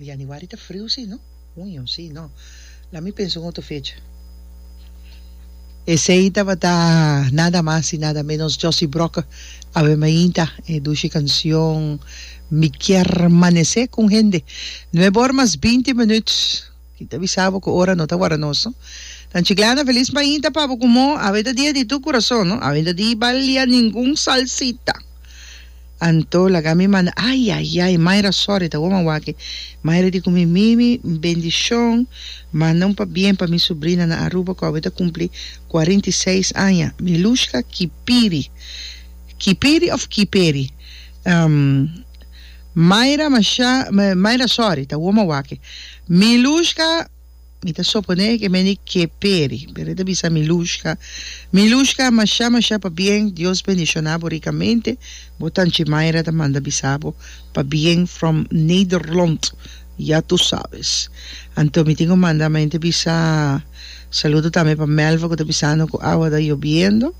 Januari ta friu si no? Huño si no? La mi pensa un otro fecha. Esey tabata nada mas y nada menos Josy Brokke awe mainta e dushi cancion Mi kier manece con hende. Nuebe or mas binti minuut. Tin ta bisa bo cu ora no ta wara nos no. Nan Chiclana feliz mainta pa bo cu mo awe ta dia di tu curason no. Awe no ta di balia ningun salsita. Anto laga mi manda ay ay ay Mayra sorry ta woman wak e Mayra di cu mi Mimi bendicion manda un pabien pa mi subrina na Aruba cu awe ta cumpli cuarenta y seis aña Milushka Kipiri Kipiri of Kiperi Mayra masha Mayra sorry ta woman wak e Milushka. Mi ta soponé ke meni ke peri, pero e ta bisa Milushka, Milushka, mashá mashá pa bien, Dios bendishoná bo rikamente, bo tanchi Mayra ta manda bisa bo pa bien from Nederlond, ya tu sabes. Anto mi tin ku manda men te bisa saludo tambe pa Melva ku ta bisando ku awa ta yobiendo,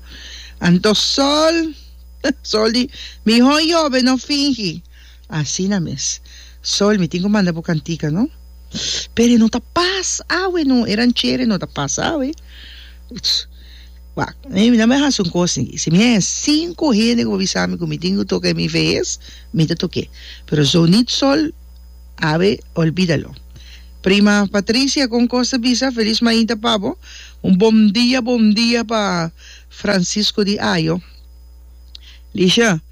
anto Sol, Sol di mihó yobe no fingi. Asina mes. Sol, mi tin cu manda bo cantica, no? Pero e no ta pas awe, no. E ranchera e no ta pas awe. Uch! Wak, mi na bay haci un cos aquí. Si mi haya cinco hende cu bo bisa mi cu mi tin cu toca e mi vees, mi ta toque. Pero zonit Sol, awe, olbida lo. Prima Patricia, con cos ta bisa? Feliz mainta pa bo. Un bom dia, bom dia pa Francisco di Ajo. Lisha.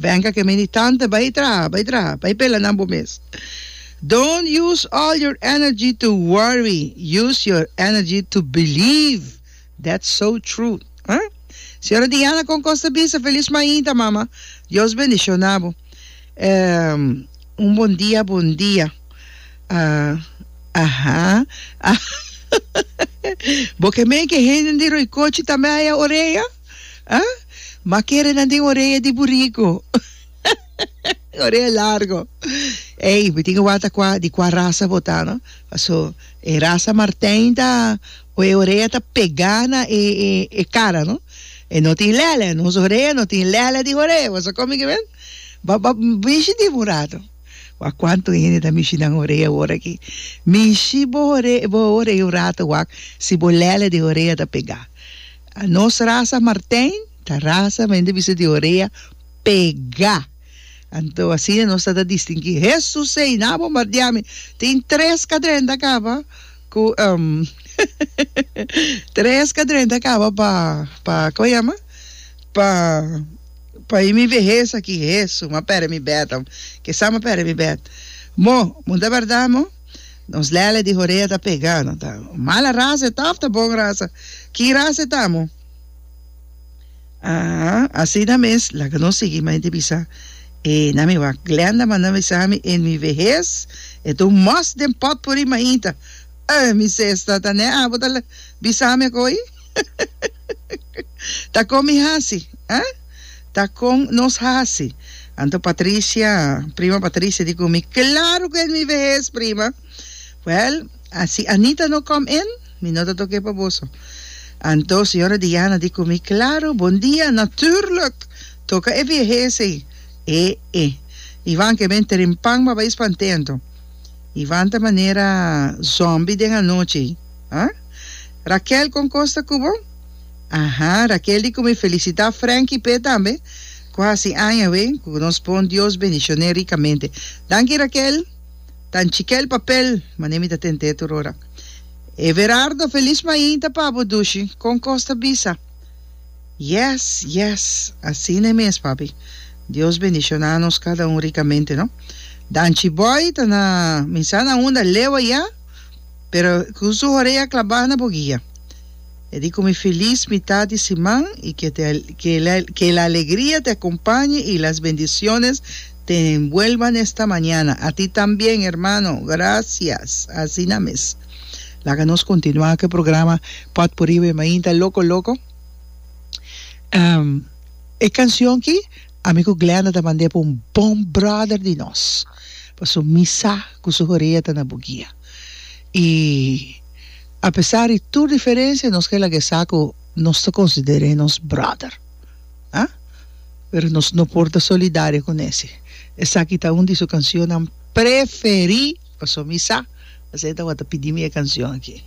Venga ke meni tante bai traha bai traha bai pela nan bo mes don't use all your energy to worry use your energy to believe that's so true ha Señora Diana kon Costa bisa felis mainta mama Dios bendiciona bo un bon dia bon dia aha bo ke mei ke hende di Roycochi tambe haya orea. Ah? Ma kere nan den orea di buriku. orea largo. Ey, mi tin ke wak ta kua, di kua rasa bo ta, no? Paso, e rasa Martijn ta, ku e orea ta pega na e, e, e kara, no? E no tin lele, nos orea no tin lele di orea, bo sa kon mi ke men? Ba, ba, mishi di bo un ratu. Wak, kuantu hende ta mishi nan orea ora aki? Mishi bo ore, bo orea un ratu wak, si bo lele di orea ta pega. A nos rasa martijn ta rasa men di bisa di orea pega. Anto asina nos ta ta distingi. Hesus ei na bombardia mi. Tin tres kadrenta kaba ku em tres kadrenta kaba pa pa kaba yama pa pa e mi vehes aki. Hesu ma pere mi bed. Ke sa ma pere mi bed. Mo, mo ta berdad mo? Nos lele di Horea ta pegá. No ta mala rasa e ta òf ta bon rasa? Ki rasa e ta amo? Aa, asina mes, laga nos sigui. Mai di bisa e na mi wak. Glenda manda bisa mi, En mi vehes e ta un mòs den pòtpuri maita. Aa, mi sesta, ta ne abo ta bisa mi akó ei? Ta con mi haci? Eh? Ta con nos haci? Anto Patricia, prima Patricia di cu mi, claro cu es mi vehes, prima. Well, a si Anita no come in, mi no ta toke pa boso. Anto señora Diana di cu mi, claro, bon dia, natuurlijk, toca e vehes ey. E, e. Ivan ke ben trimpan ma bay spanteando. Ivan ta manera zombie den anochi. Ah? Raquel con cos ta cu bo? Aha, Raquel di cu mi felicita Frankie p'e tambe cu haci aña awe cu nos pon Dios bendicion'e ricamente. Danki Raquel, ta n'chikel papel mane mi ta tent'e tur ora. Everardo, feliz mainta pa bo dushi, con cos ta bisa? Yes, yes, asina mes papi, Dios bendiciona nos cada un ricamente no. Danchi Boy ta na minsana unda lewa ya? Pero cu su horea clabá na bo guia. E di cu mi filis mitat di siman y que te que el alegria te acompañe y las bendiciones te envuelvan esta mañana. A ti también hermano. Gracias. Asina mes. Laga nos continua cu e programa potpourri wen mainta loco loco. E cancion ki ami cu Glenda ta mand'e pa un bon brother di nos. Pasobra mi sa cu su horea ta na bo guia. I apesar di tur diferensia nos ke laga esa ku nos ta konsider'é nos bròder. A pero nos no por ta solidario ku nesi. Esaki ta un di su kanshonnan preferí, paso mi sa asina tabata pidi mi e kanshon aki.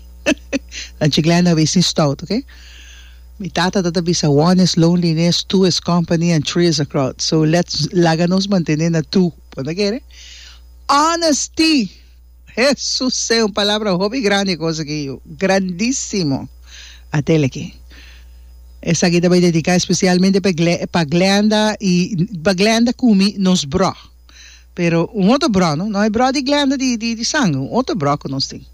Anchi Glenda a bes ni stout, oke. Mi tata ta ta bisa one is loneliness, two is company and three is a crowd. So let's laga nos mantené na two, bo ta kere? Honesty! Hesusee un palabra hopi grandi kos aki yu grandisimo atel aki esaki ta bai dediká espesialmente pa pa Glenda i pa Glenda kumi nos brò pero un otro brò no hay brò di Glenda di di sange un otro brò ku nos tin.